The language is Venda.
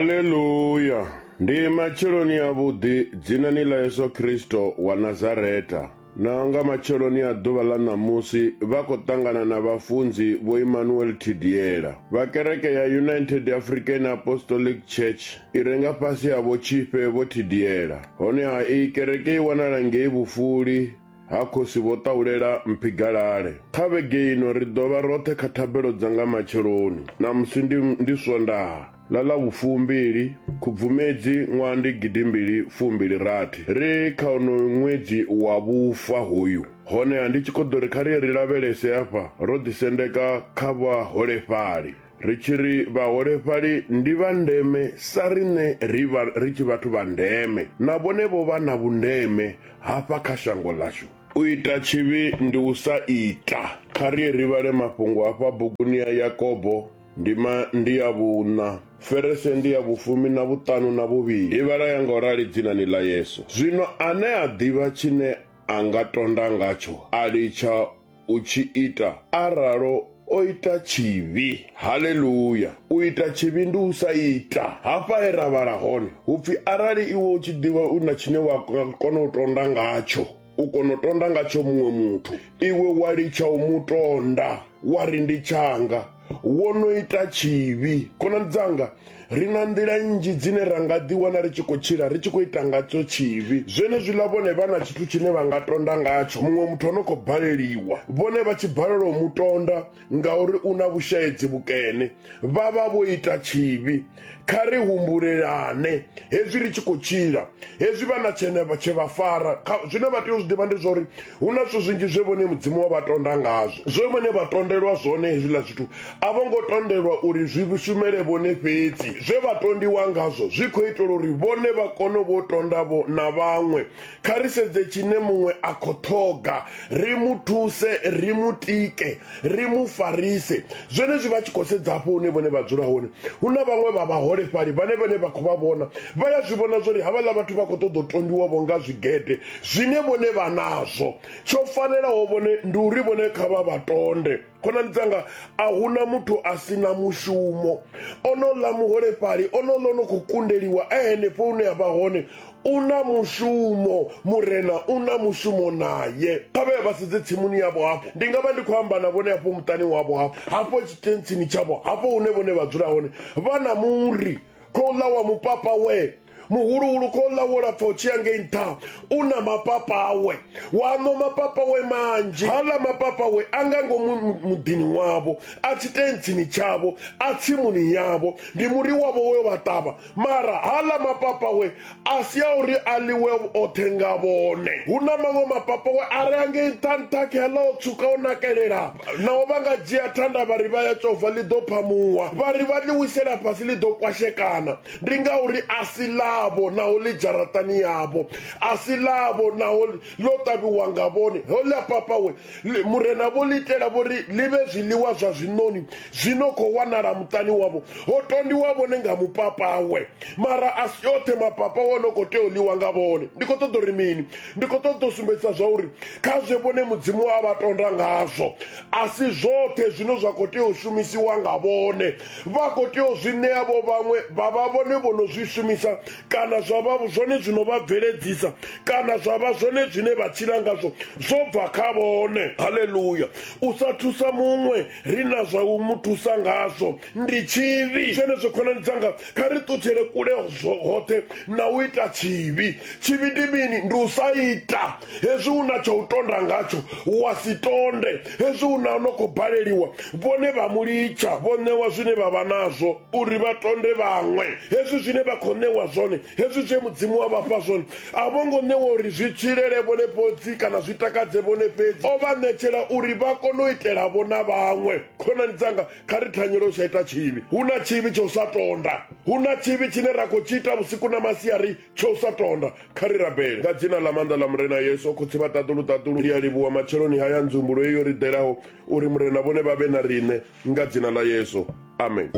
Haleluya! Ndi matsheloni a vhuḓi dzinani ḽa Yesu Kristo wa Nazareta. Na nga matsheloni a ḓuvha ḽa ṋamusi vha khou ṱangana na vhafunzi vho Emmanuel Thidiela vha kereke ya United African Apostolic Church i re nga fhasi ha vho Tshifhe vho Thidiela. Honeha iyi kereke i wanala ngei Vhufuli ha khosi vho ṱahulela mphigalale kha vhege ino ri ḓo vha roṱhe kha thabelo dza nga matsheloni namusi ndi, ndi swondaha ḽa ḽa vhufumbili khubvumedzi ṅwaha ndi gidimbili fumbili rathi ri kha onoyu ṅwedzi wa vhufa hoyu honeha ndi tshi khou ḓo ri kha ri ye ri lavhelese afha ro ḓisendeka kha vhaholefhali Ri tshi ri vhaholefhali ndi vha ndeme sa riṋe ri vha ri tshi vhathu vha ndeme, na vhone vho vha na vhundeme hafha kha shango ḽashu. U ita tshivhi ndi u sa ita. Kha ri ye ri vhale mafhungo a fha buguni ya Yakobo, ndima ndi ya vhuṋa, ferese ndi ya vhufumi na vhuṱanu na vhuvhili. I vhala ya nga u rali dzinani ḽa Yesu. Zwino ane a ḓivha tshine a nga tonda ngatsho a litsha u tshi ita a ralo o ita tshivhi haleluya u ita tshivhi ndi u sa ita hafha he ra vhala hone hupfi arali iwe u tshi ḓivha u na tshine wa kona u tonda ngatsho u kona u tonda ngatsho muṅwe muthu iwe wa litsha u mu tonda wa ri ndi tshanga wo no ita tshivhi khonani dzanga ri na nḓila nnzhi dzine ra nga ḓiwana ri tshi khou tshila ri tshi khou ita ngatsho tshivhi zwenezwiḽa vhone vha na tshithu tshine vha nga tonda ngatsho muṅwe muthu o no khou baleliwa vhone vha tshi balelwa u mu tonda ngauri u na vhushaedzi vhukene vha vha vho ita tshivhi kha ri humbulelane hezwi ri tshi khou tshila hezwi vha na tshene tshe vha fara zwine vha tea u zwi ḓivha ndi zwauri hu na zwithu zwinzhi zwe vhone mudzimu wa vha tonda ngazwo zwe vhone vha tondelwa zwone hezwiḽa zwithu a vho ngo tondelwa uri zwi shumele vhone fhedzi zwe vha tondiwa ngazwo zwi khou itela uri vhone vha kone vho tondavho na vhaṅwe kha ri sedze tshine muṅwe a khou ṱhoga ri mu thuse ri mu tike ri mu farise zwenezwi vha tshi khou sedza hafho hune vhone vha dzula hone hu na vhaṅwe vha vhaholefhali vhane vhane vha khou vha vhona vha ya zwi vhona zwori havhaḽa vhathu vha khou ṱoḓa u tondiwavho nga zwigede zwine vhone vha nazwo tsho fanelaho vhone ndi uri vhone kha vha vha tonde khonani dzanga a huna muthu a si na mushumo ono ḽa muholefhali ono ḽa no khou kundeliwa a henefho hune a vha hone u na mushumo murena u na mushumo naye kha vhe vha sedze tsimuni yavho hafho ndi nga vha ndi khou amba na vhone hafho muṱani wavho hafho hafho tshitentsini tshavho hafho hune vhone vha dzula hone vha na muri khou ḽa wa mupapa we muhuluhulu khou ḽa wo lapfa u tshiya ngei nṱha u na mapapa awe wa ṅwa mapapa we manzhi haḽa mapapa we a nga ngomu muḓini wavho a tshitentsini tshavho a tsimuni yavho ndi muri wavho we vha ṱavha mara haḽa mapapa we a si a uri a ḽiwe oṱhe nga vhone hu na maṅwe mapapa we a re angei nṱhanṱha khela o tswuka o nakelela naho vha nga dzhia thanda vha ri vha ya tshovha ḽi ḓo phamuwa vha ri vha ḽi wisela fhasi ḽi ḓo kwashekana ndi ngauri a si ḽavho naho ḽi dzharaṱani yavho a si ḽavho naho ḽo ṱavhiwa nga vhone ho ḽa papawe Ḽi- Murena vho ḽi itela vho ri ḽi vhe zwiḽiwa zwa zwiṋoni zwi no khou wanala muṱani wavho. Ho tondiwa vhone nga mupapawe, mara a si oṱhe mapapawe o no khou tea u ḽiwa nga vhone. Ndi khou ṱoḓa uri mini? Ndi khou ṱoḓa u sumbedzisa zwa uri kha zwe vhone Mudzimu a vha tonda ngazwo, a si zwoṱhe zwine zwa khou tea u shumisiwa nga vhone. Vha khou tea u zwi ṋea vho vhaṅwe vha vha vhone vho no zwi shumisa kana zwa vha zwone zwino vha bveledzisa kana zwa vha zwone zwine vha tshila ngazwo zwo bva kha vhone haleluya u sa thusa muṅwe ri na zwa u mu thusa ngazwo ndi tshivhi zwenezwo khonani dzanga kha ri ṱutshele kule hoṱhe na u ita tshivhi tshivhi ndi mini ndi u sa ita hezwi u na tsha u tonda ngatsho wa si tonde hezwi u na no khou baleliwa vhone vha mu litsha vho ṋewa zwine vha vha nazwo uri vha tonde vhaṅwe hezwi zwine vha khou ṋewa zwone hezwi zwe mudzimu wa vhafha zwone a vho ngo ṋewa uri zwi tshilele vhone fhodzi kana zwi takadze vhone fhedzi o vha ṋetshela uri vha kone u itelavo na vhaṅwe khonani dzanga kha ri thanyele u sa ita tshivhi hu na tshivhi tsha u sa tonda hu na tshivhi tshine ra khou tshi ita vhusiku na masiari tsha u sa tonda kha ri rabele nga dzina ḽa maanḓa ḽa murena yesu khotsi vha ṱaḓulu ṱaḓulu ndi a livhuwa matsheloni haya nzumbulo eyo ri ḓelaho uri murena vhone vha vhe na riṋe Nga dzina ḽa Yesu. Amen.